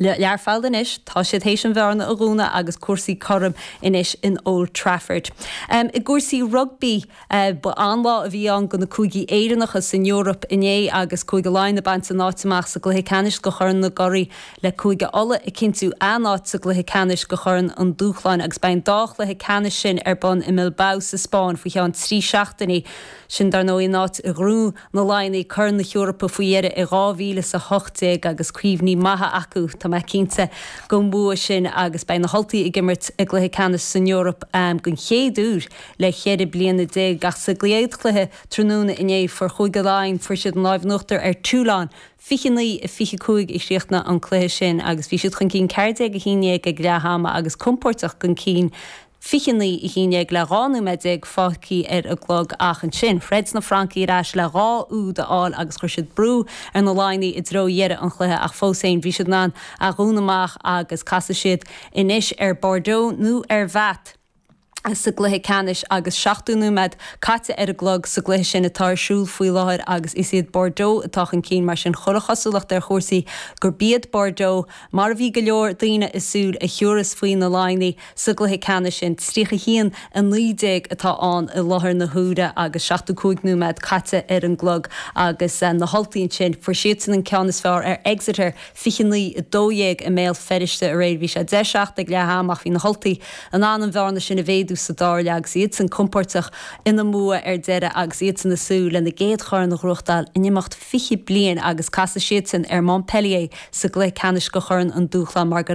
Learphoill anois. Tá siad théis an bhearna a dhúnadh agus cúrsaí cothrom anois in Old Trafford. I gcúrsaí rugbaí, ba an-lá a bhí ann do na Cúigí Éireannacha san Eoraip inné agus Cúige Laighean ag baint a n-áit amach sa gCluiche Ceannais do Chorn na gCuraidh le Cúige Uladh ag cinntiú a n-áit sa gCluiche Ceannais do Chorn an Dúshláin agus beidh an dá chluiche ceannais sin ar bun i mBilbao sa Spáinn faoi cheann trí seachtainí. Sin, dar ndóigh, a n-áit i na Laighnigh Corn na hEorpa faoi dheireadh i 2018 agus cuimhní maithe acu, tá mé cinnte, den bhua sin agus beidh na hUltaigh ag imirt i gcluiche ceannais san Eoraip den chéad uair le ceithre bliana déag ach sa gcéad chluiche tráthnóna inné fuair Cúige Laighean fuair siad an láimh in uachtar ar Toulon 29, 25 a chríochnaigh an cluiche sin agus bhí siad chun cinn 14 11 ag leath ama agus compóirteach chun cinn. 29 a haon déag le 12 nóiméad fágthaí ar an gclog ach ansin throid na Francaigh ar ais le dhá úd a fháil agus chuir siad brú ar na Laighnigh i dtreo dheireadh an chluiche ach fós féin bhí siad in ann é a dhúnadh amach agus casfaidh siad anois ar Bordeaux nó ar Bath sa gcluiche ceannais agus 70 nóiméad caite ar an gclog sa gcluiche sin atá ar siúl faoi láthair agus is iad Bordeaux atá chun cinn mar sin cuid an chosúlacht ar chúrsaí gurb iad Bordeaux mar a bhí go leor daoine ag súil a thiúras faoi na Laighnigh sa gcluiche ceannais sin. 31, 19 atá ann i láthair na huaire agus seachtó cúig nóiméad caite ar an gclog agus na hUltaigh ansin, fuair siadsan an ceann is fearr ar Exeter, 29, 12 i mBéal Feirste aréir. Bhí sé deich, seacht ag leath ama ach bhí na hUltaigh in ann an bhearna sin a mhéadú sa dara leath agus iadsan compóirteach ina mbua ar deireadh agus iadsan ag súil lena gcéad chorn a ghnóthachtáil in imeacht fiche bliain agus casfaidh siadsan ar Montpellier sa gcluiche ceannais do Chorn an Dúshláin mar go